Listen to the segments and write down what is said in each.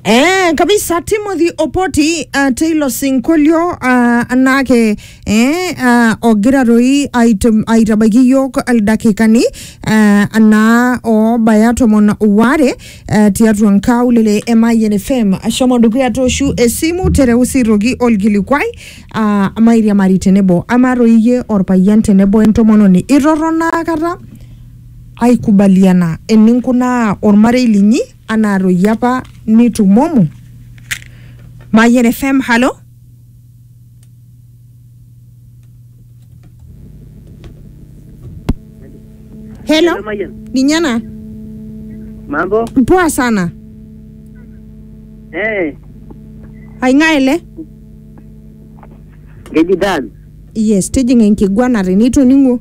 Eh, kabisa timothy opoti uh, taylor sinkolio uh, anake eh, uh, ogira toi aitam- aitabaiki yiok ildakikani uh, anaa obaya tomon ware uh, tiatua nkaulele e mayian fm ashomo dukuya toshu esimu tereu sirroki olkilikuai uh, mairiamari tenebo amaa toi iyie orpayian tenebo entomononi itorrono akata Aikubaliana eninkunaa olmarei linyi anaa toi apa nitumomo. Mayian FM, halo? Hello? Hello, Mayian. Ninye ena? Mambo? Poa sana. Eh, Aing'ae ele? keji Dan. Yes, tijing'a enkiguana tenitoning'o.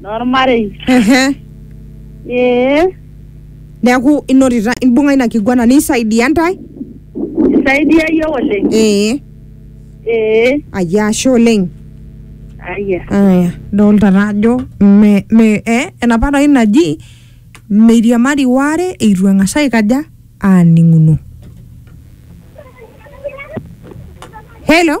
Normarei. Ehe. Ee. Neaku inotita imbung'a ina kiguana nisaidia ntae? Isaidia iyiook oleng. Ee. Ee. Ayia ashe oleng. Aya. Aya, dolta taa ajo me, me, eh, enapa doi naji meiriamari waare eitu eng'as aikaja aaning'uno. Hello?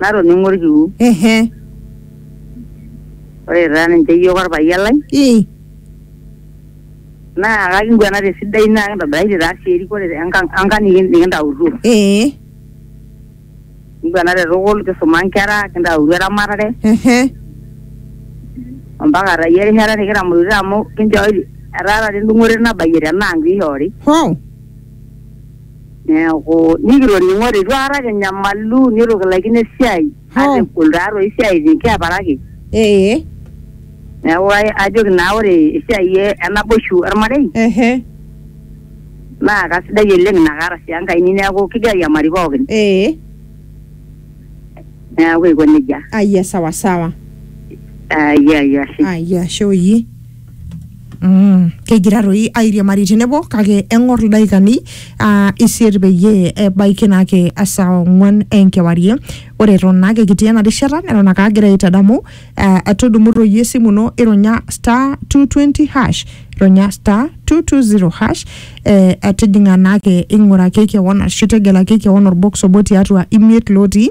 natoning'o olkiu ehe ore taa ninche iyiook olpayian lai ii naa kakinguana te sidai naa kintobiraitie taa sii erikore enkang enkang niki- nikintautuo ee kinguana te tukul kisuma nkera kintautuo eramatare ehe ompaka taa iyie erishata nikitamorutito amu kinchooki etaa taata endung'oto nabayie tena ang piishoori hoo Neaku nikitoning'ote itu aikata kinyamalu nitu kilaikino esiai Hoo. ata egol taatoi esiai nikiaparaki. Ee. Neaku ai- ajoki naa ore esiai e- enaboishu olmarei Ehe. naa kasidai oleng ina kaata sii enkaini neaku kigira airiamari pookin. Ee. Neaku aiko nejia. Ayia sawa sawa. Ayia ayia ashe. Ayia ashe oyie. Mm. kegira toi airiamari tenebo kake eng'or ildaikani uh, isiet peyie ebaiki naake esaa ong'uan enkewarie ore eton naake kitii ena rishata neton ake agira aitadamu uh, tudumu toi esimu ino ironya star 220 hash ironya star 220 hash eh, atijing'a naake ing'uraki kewon ashu tegelaki kewon orbox obo tiatua imiet lotii